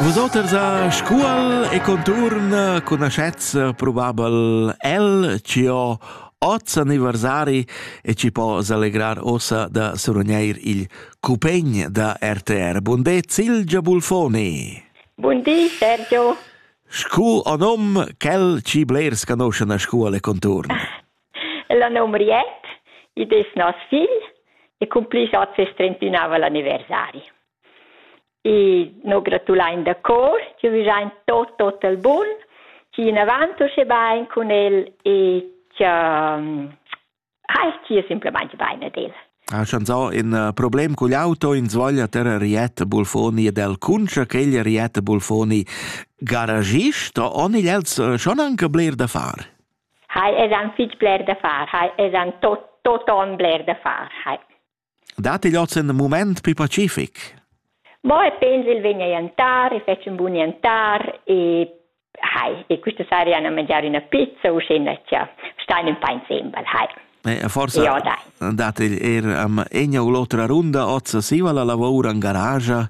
Vusoters a Scuol e conturn conoscetz probabel el ci ho oz anniversari e ci po s'allegrar ossa da surognir il cupegn da RTR. Bun de Silgia Bulfoni. Bun di Sergio. Scu o nom quel ci blers canoscen a Scuol e conturn? La nom Riet, id es nos figl e cum pli oz es trentunava l'anniversari. E no gratulain da cor chi vegiain tot tot al bun, chi in avant usche bain cun el e cha hai chia simplamaing bain ad el. Ha chanzà in uh, problem cugl auto in svoglia terra Riette Bulfoni ed el cuncia che il Riette Bulfoni garagist o nigl els uh, schon anche bler da far? Hai es an fitg bler da far, hai es an tot tot on bler da far, hai. Dat igl oz in moment pli pacific? Mo e pens il vegn a jantar e fetg un bun jantar e hai e questa seria na mangiare una pizza u scena cha stein un pain sembel hai. E forse ja, dat il er am egna u l'otra runda ozza siva la lavora in garage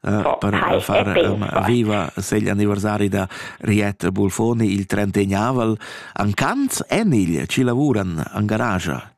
eh, oh, per hai, far um, viva se gli anniversari da Riet Bulfoni il 31 aval an Canz en il ci lavuran an garage.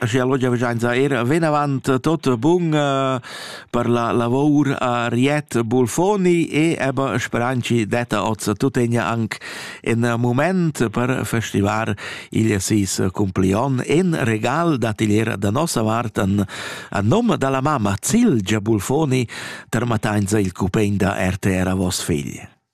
Aschia lò giavischainsa eir vinavant tot bun per la lavor a Riet Bulfoni e eba speranchi detta hoz tutegna anc ün mumaint per festivar il seis cumplion in regal d'atelier da nossa vart a nom da la mamma Cilgia Bulfoni termatainsa il cupegn da RTR a voss figl.